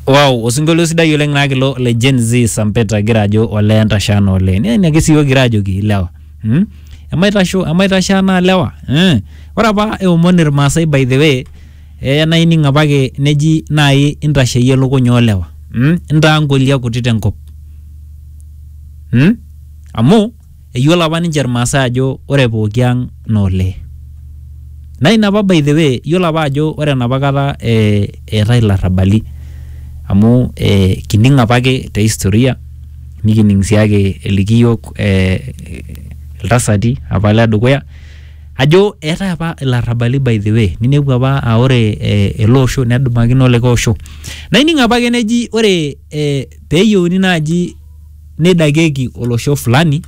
Wow, osinkolio sidai oleng naa kilo le Gen Z Sampeta gira ajo olee entasha ana olee. Naa ina ake siyiok kira ajoki ilewa. Hmm? Emaitasho, emaitasho anaa lewa. Eh. Ore apa eomon Irmaasai by the way, eh naa ining apake neji naai intasheyie ilukuny oolewa. Hmm? Intaa nkolia kuti tenkop. Hmm? Amu Eyiolo apa ninche Irmaasai ajo ore pooki ang naa olee. Naa ina apa by the way, iyiolo apa ajo ore enapa kata eh eetae ilarrabali amu eh kining apake te historia nikining sii ake eliki iyiok eh iltasati apa le dukuya ajo eetae apa ilarrabali by the way ninepu apa aa ore eh ele osho nedumakino olikae osho. Naa ining apake neji ore eh peyieuni naaji neidakieki olosho fulani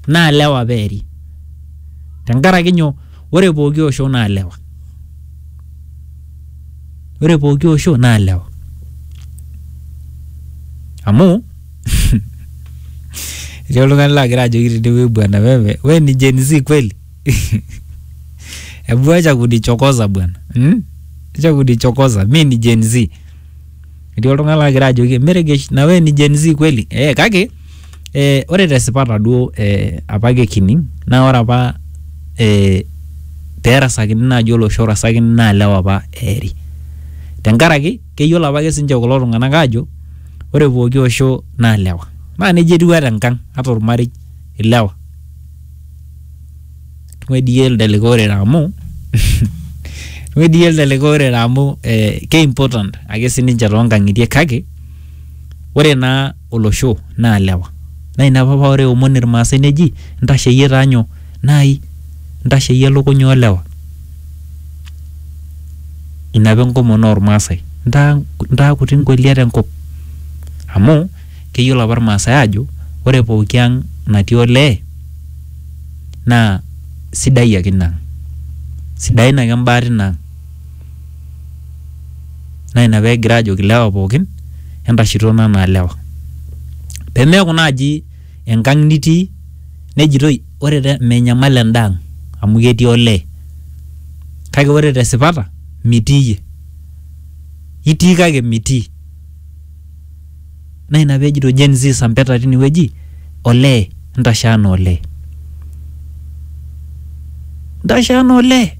naa lewa peeri tenkaraki nyoo ore pooki osho naa lewa ore pooki osho naa lewa amu etii oltung'ani laagira ajoki tenewueji bwana wewe we ni Gen Z kweli hebu acha kunichokoza bwana hmm? acha kunichokoza mi ni Gen Z etii oltung'ani lagira ajoki meregesh na we ni Gen Z kweli eh, kake eh, ore tesipata duo eh, apa ake kining naa ore apa eh, perasakini naaji olosho orasakini naa lewa apa eeri tenkaraki keyiolo apake sinche kulo tung'anak aajo ore pooki osho naa lewa naa nejia etiu ata enkang ata ormarei ilewa. tung'uediyie elde likae orere amu tung'uediyie elde likae orere amu eh, ke important ake sininche toonkang'itie kake ore naa olosho naa lewa naa ina apa paa ore eomon irmaasai neji ntasheyie taa nyoo naai ntasheyie ilukuny oolewa ina apa enkomono ormaasai ntaa ntaa kuti ingoliat enkop amu keyiolo apa irmaasai aajo ore pooki ang natii olee naa sidai ake ina ang sidain ake imbaa tina ang naa ina pegira aajoki ilewa pookin entashitona anaa ilewa pemeeku naaji enkang nitii nejitoi ore te menyamal enda ang amu ketii olee kake ore tesipata mitii iyie itii kake mitii. Naa ina pee ejito Gen Z sampeta tine wueji olee ntashe anaa olee. Ntashe anaa olee.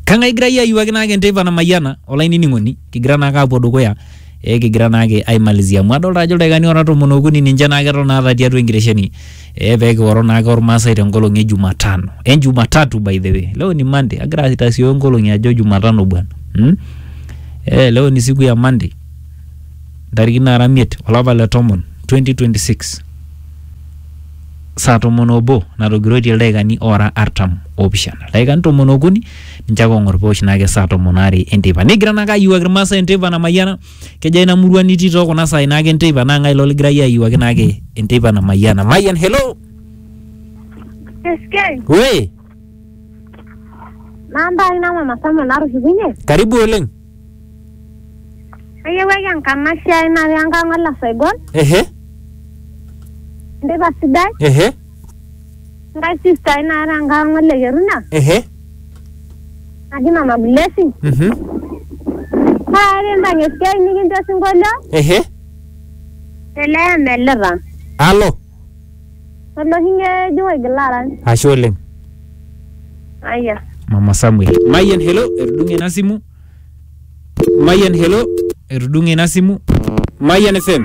Kang'ae egira iyie ayiuaki naake enteipa namayiana olainining'oni kigira naake aapuo dukuya ee kigira naake aimalizia amu adolta ajo ildaikani oora tomon okuni ninche naake eton aata tiatua enkitesheni Eh, pee kioro naake ormaasai te nkolong e Jumatano. Eh, Jumatatu by the way. Leo ni Monday. Agira aitasioyo nkolong'i ajo Jumatano bwana. Hmm? Eh, leo ni siku ya Monday. Ntariki nara imiet olapa le tomon 2026. Saa tomon obo natogiroitie ildaikani oora artam oopishana. Ildaikani tomon okuni ninche ake oong'or peosh naake saa tomon aare enteipa. Nigira naake ayiewuaki irmaasai enteipa namayiana. Kejo ai ina murua nitii too kuna saai naake enteipa naa ng'ae ilo ligira iyie ayiewuaki naake enteipa namayiana. Mayian, hello! Eskei, We, namba ai na mama Samuel natushukunye. karibu oleng. Ayiewuaki enkanashe ai natii enkang' olasaigol, Ehe, enteipa sidai. ehe. Nkai sister ai naata enkae ong'ol le Keruna Ehe. naji Mama Blessing. Mhm. Naa ekimpang esiai nikincho osinkolio Ehe. ele emelita. Alo. Oloshi ng'ejuk oigila arany. Ashe oleng. Aya. Mama Samuel. Mayian hello, etudung'e ina simu. Mayian hello, etudung'e ina simu. Mayian FM.